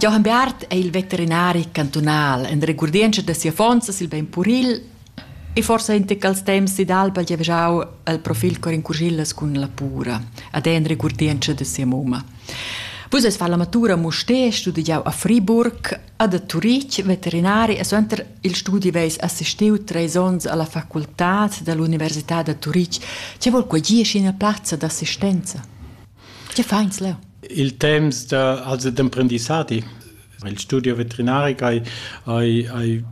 Johann Beat è il veterinari cantunal en regurdientscha da sia fonza sil bein puril e forsa in tec als temps d'Alba giavgiau al profil cor in curgillas cun la pura, ad en regurdientscha da sia mumma. Vus eis fa la matura Musté, studiau a Friburg, ad a Turitg, veterinari e suenter il studi veis assistiu treis onns alla facultad dall'università da Turitg. Che vol quei gie ina plazza d'assistenza? Che fa ins leu? Il temps da, also d'emprendissadi. Il studio veterinaric hai, hai, hai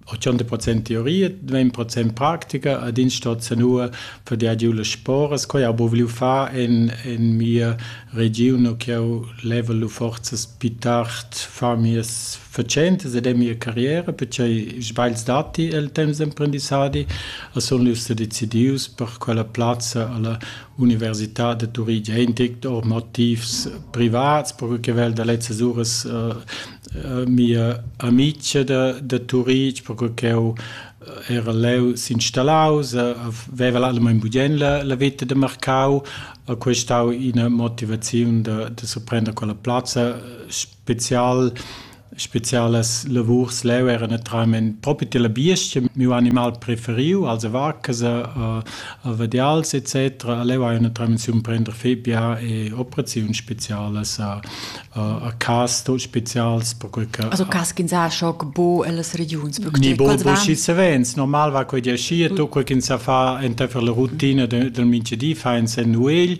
80% teoria, 20% pratica ad in stat sanua per der giu le sporas quei abo vliu fa en en mia region che ho level forzas più tard fa mies facentas ed è mia carriera perché sbagls dati el temps d'emprendissadi a son lius decidius per quella plazza alla Università da Turitg è in tic or motivs privats, perque che vel da lezzas uras uh, mia amica da, da Turitg, perque ch'eu era leu s'installaus, veva allamain bugien la, la vita de Marcau, a questau ina motivaziun da, da surprender quella plazza spezial spezialas lavurs leu era naturalment propi tilla biestga miu animal preferiu also vacasa a vadials etc leu hai naturalment si prender febia e operaziun spezialas a a cas tot spezials perquei che also cas ch'ins ha schoc bo ellas regiuns ni bo bo schi savens normal va quei di aschi e to quei ch'ins sa fa enteifer la rutina del mingedi fa ins en nuegl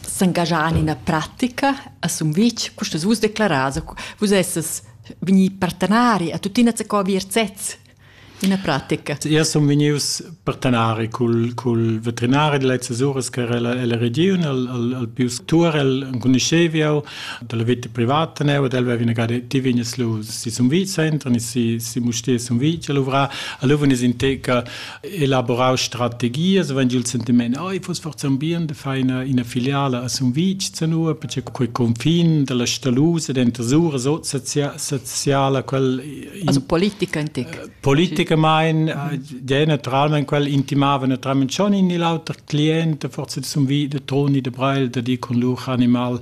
s'engaschar en ina pratica a Sumvitg, custa vus declarar, vus essas vegnì partenari a tuttina co vir sez ina pratica. Io sun vegnius partenari cul, cul veterinari de lezzas uras che era la region, al, al, al pius Turel, enconuscheviau, dalla vita privata neu, ed el veva vinagare, ti vignes lu si Sumvitg, entran si, si Mustie Sumvitg, a luvra, a luvun is inteca elaborau strategias vegn il sentiment ei fuss forsa un bien de far ina, ina filiala a Sumvitg zanua perché quei confin dalla Stalusa denter Sura soziala quel in, also politica in tic politica mein der naturalment quel intimava naturalment schon in il auter cliente forse de Sumvitg de Toni de Breil de di con lur animal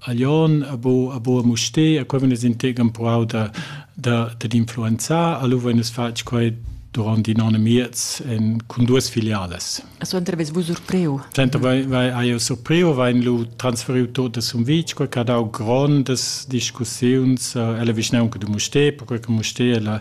a Lyon, a Bo, a Bo a Mustér, a quei venes integ empruau da, da, da influenzar, allo venes fatg quei durant in anno e miez en, cun duas filiales. Suenter ves vus surpriu? Suenter vai, vai aio surpriu, vai lu transferiu tot das um vic, quei che ha dau grondas discussiuns, eh, ella vischnaunca du Mustér, perquei che Mustér è la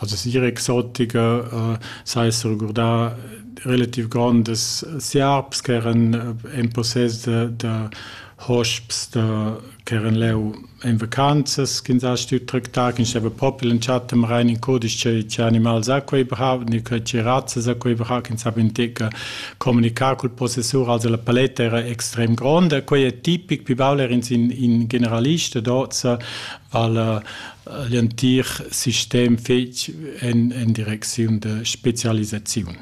Also siera exotica s'ha esser regurdà relativ grondas siarps ch'eran in possess da da hosps da ch'eran leu en vacanzas ch'ins ha stuiu tractar, ch'ins steva propi l'entschatta marain in cudisch che che animals ha quei brau, ni che che razzas ha quei brau, ch'ins havi entega communicar cul possessur, also la paletta era extrem gronda. Quei è tipic, pi baul er'ins in in generalist ad hoz vala l'entir sistem fetg en, en direcziun de specialisaziun.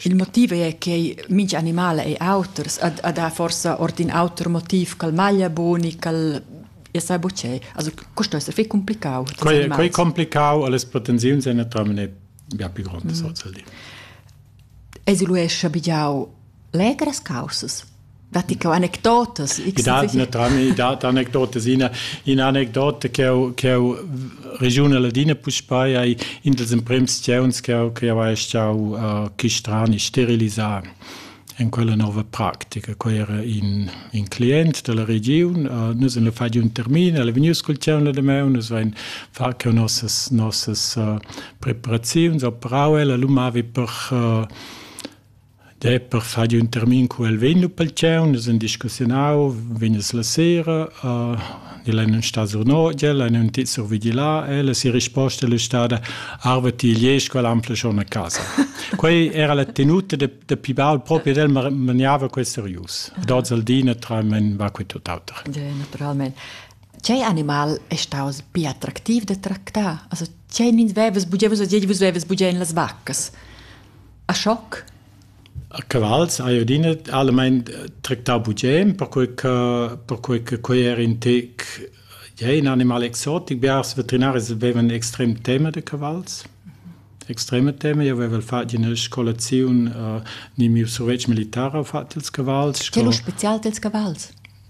Il motiv è che minch animal è auters, ad, ad ha forsa ord in auter motiv ch'al maglia boni, ch'al e sai bucei. Also questo essere fei complicau. Quei, quei complicau alle potenziazioni è naturalmente ja più grande mm. social. Esiluesce bigiau legras causas. Datti che anecdotas? I dat naturalmein i dat anecdotas. Ina, ina anecdota che ho, che ho regiun Ladina puspei ei in dels emprems sceunds che ho, che ho ei stau uh, chistrani sterilisar in quella nova pratica. Quei era in, in client della regiun, uh, nus in fa di un termin, el è vegniu col ceun de meu, nus vein fa che nossas nossas uh, preparaziuns operau el, lu mavi per uh, Dai per far ün termin cu el vegn lu pel tgau, nus han discussiunau, vegnas la sera, el ei nun sta sur Nodia, el ei nun tit survigli là e la sera risposta el è stada arva ti gliez quella ampla schon a casa. Quei era la tenuta da, da pi baul propi ed el maniava quei serius. Dod al di naturalment va quei tut auter. Ja, naturalment. Tgei animal è staus più attraktiv da tractar? Also, tgei nins vevas bugeves o dieves vevas bugen las vaccas? A schoc? A cavals hai adina almain tractau bugien, perquei che perquei che quei era in tec ja in animal exotic. Biars veterinaris vevan extrem tema da cavals, extrema tema. Io avevo fatg ina scolaziun, uh, ni miu survetsch militare ho fatg ils cavals. Sco lu spezial dils cavals?